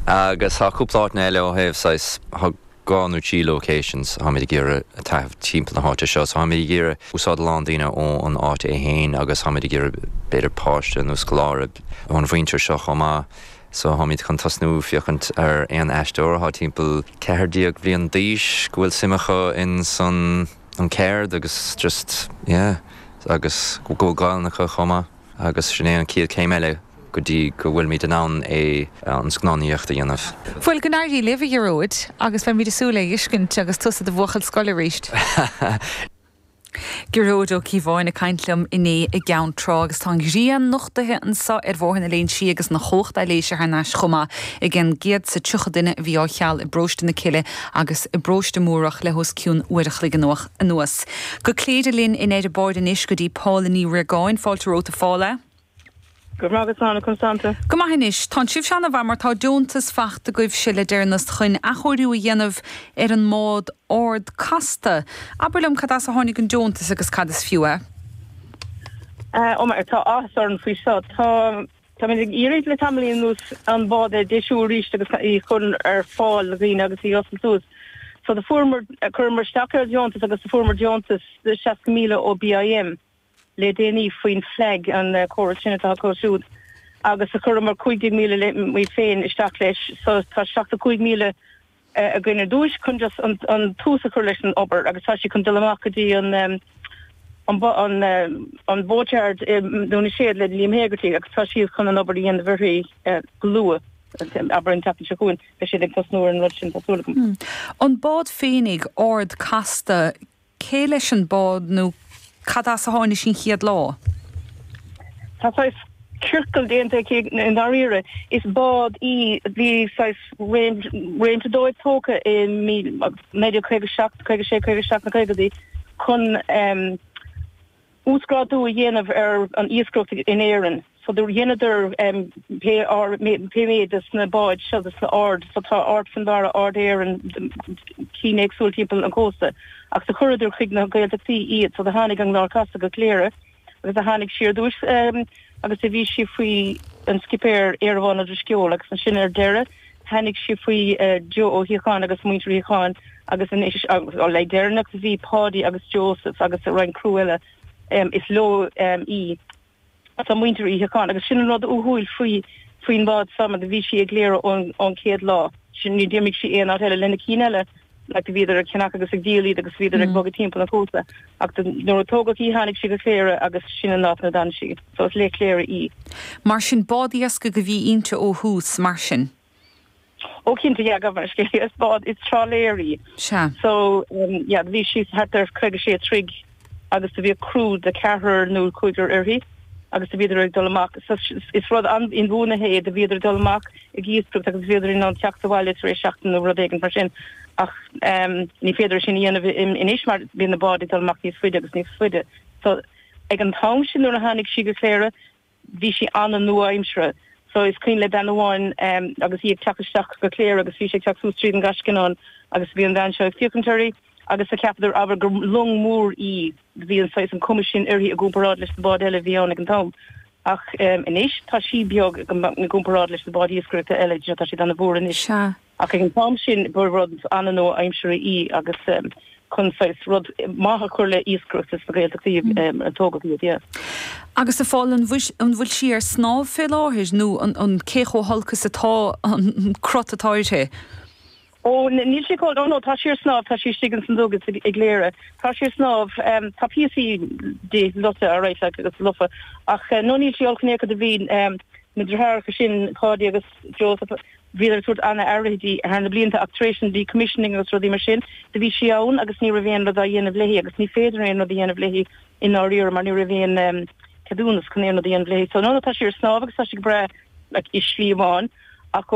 Agus tá cúpla áiteanna eile ó thaobh saghas, tá dhá nó trí locations táimid ag iarraidh a taitneamh timpeall na háite seo. So táimid ag iarraidh úsáid a lán daoine ó an áit é féin agus táimid ag iarraidh b'fhéidir páiste nó scoláire ón mhuintir seo chomh maith. So táimid chun tosnú féachaint ar aon aisteoir atá timpeall ceathair déag bliain d'aois go bhfuil suim acu insan an ceard agus just yeah agus go bhfuil Gaolainn acu chomh maith. Agus sin é an chéad céim eile go dtí go bhfuilimid in ann é, an scannánaíocht, a dhéanamh. Bhuel, go n-éirí libh, a Ghearóid, agus beimid ag súil lena fheiscint agus tusa i do bhuachaill scoile arís. Gearóid Ó Cíobháin ag caint liom inné i gCeann Trá agus tá an ghrian nochtaithe anseo ar Bhóthar na Léinsí agus an chumhacht aibhléise thar n-ais chomh maith ag an gcéad is tríocha duine a bhí á cheal i bParóiste na Cille agus i bParóiste Múrach le hos cionn uair a chloig anuas. Go Cléire linn in airde ar bord anois go dtí Paula Ní Ríogáin. Fáilte romhat a Phaula. Go raibh maith agat, conas tánn tú? Go maith anois. Tánn sibhse ana mhaith mar tá deontas fachta agaibhse le deireannas chun athchóiriú a dhéanamh ar an mbád Ard Casta. Abair liom cad as a tháinig an deontas agus cad is fiú é. Ó, tá áthas orainn faoi seo. Tá. Táimid ag iarraidh le tamaillín anuas an bád a dheisiú arís agus í a chur ar fáil do dhaoine agus í a oscailt suas. So do fuaireamar, chuireamar isteach ar dheontas agus do fuaireamar deontas de 60,000 ó BIM le déanaí faoin FLAG, an córas sin atá acu siúd agus do chuireamar 15,000 muid féin isteach leis so tá 75,000 againn ar dtúis chun just an tús a chur leis an obair agus tá sí chun dul amach go dtí an boatyard i nDún na Séad le Liam Hegarty agus tá sé chun an obair a dhéanamh uirthi go luath. Abair an tseachtain seo chugainn beidh siad ag tosnú ar an rud sin tá súil agam. An bád féinig, Ard Casta, Cé leis an bád nó cad as a tháinig sí an chéad lá? Tá saghas ciorcal déanta aici i ndáiríre. Is bád í a bhí saghas réimse dóibh tógtha i naoi déag caoga seacht, caoga sé, caoga seacht sna caogaidí chun. Uasghrádú a dhéanamh ar an iascaireacht in Éirinn. So do dheineadar pé pé méid de sna báid seo de sna Ard. So tá Ard Fionnbarra, Ard Éireann, cinn éagsúil timpeall an cósta. Ach do chuireadar chuig na Gaeltachtaí iad. So do tháinig an Ard Casta go Cléire agus do tháinig sí ar dtúis agus do bhí sí faoi an scipéar Éireamhán Ó Drisceoil agus ansin ar deireadh Tháinig sí faoi Joe Ó Síocháin agus Muintir Uí Shíocháin agus anois le deireanacht bhí Páidí agus Joseph agus roinnt criú eile is leo í. Tá Muintir Uí Shíocháin agus sin an rud uathúil faoi faoin bhád seo mar bhí sí i gCléire ón chéad lá. Sin ní d'imigh sí aon áit eile lena cinn eile like bhíodar ag ceannach agus ag díol iad agus bhíodar ag bogadh timpeall an chósta ach nuair a tógadh í tháinig sí go Cléire agus sin an áit ina d'fhan sí. So is le Cléire í. Mar sin bád iascaigh a bhí inti ó thús, mar sin? Ó cinnte yeah gabh mar is léigh is bád is trálaeir í. Sea. So yeah bhí sí thart ar 56 troigh. agus do bhíodh criú de ceathrar nó cúigear uirthi agus do bhíodar ag dul amach, is rud inbhuanaithe é, do bhíodar ag dul amach ag iascaireacht agus bhíodar in ann teacht abhaile tar éis seachtain nó rud éigin mar sin ach ní féidir sin a dhéanamh anois mar bíonn na báid ag dul amach níos faide agus níos faide so ag an t-am sin nuair a tháinig sí go Cléire bhí sí an-nua-aimseartha so is cuimhin le bean amháin agus í ag teacht isteach go Cléire agus bhí sí ag teacht suas tríd an nGascanán agus bhí an bhean seo ag féachaint uirthi agus do cheapadar abair gur long mhór í do bhí an saghas an cuma sin uirthi i gcomparáid leis na báid eile a bhí ann ag an t-am ach anois tá sí beag i gcomparáid leis na báid iascaireachta eile tá siad ana mhór anois. Sea, Ach ag an t-am sin ba rud an-nua aimseartha í agus chun saghas rud maith a chur le iascaireacht sna Gaeltachtaí a tógadh iad, yeah. Agus a Phóil, an bhfuil sí ar snámh fé láthair nó an cé chomh holc atá an cruth atá uirthi? Ó, níl sí chomh, ó no, tá sí ar snámh, tá sí istigh ins an duga i gCléire. Tá sí ar snámh, tá píosaí di lofa alright like agus lofa ach no níl sí olc in aon chor do bhí na deartháireacha sin, Páidí agus Joseph, Bhíodar ag tabhairt an-aire di thar na blianta ach tar éis an decommissioning agus rudaí mar sin do bhí sí ann agus ní raibh aon rud á dhéanamh léi agus ní féidir aon rud a dhéanamh léi i ndáiríre mar ní raibh aon ceadúnas chun aon rud a dhéanamh léi. So no no tá sí ar snámh agus tá sí go breá like i slí amháin ach go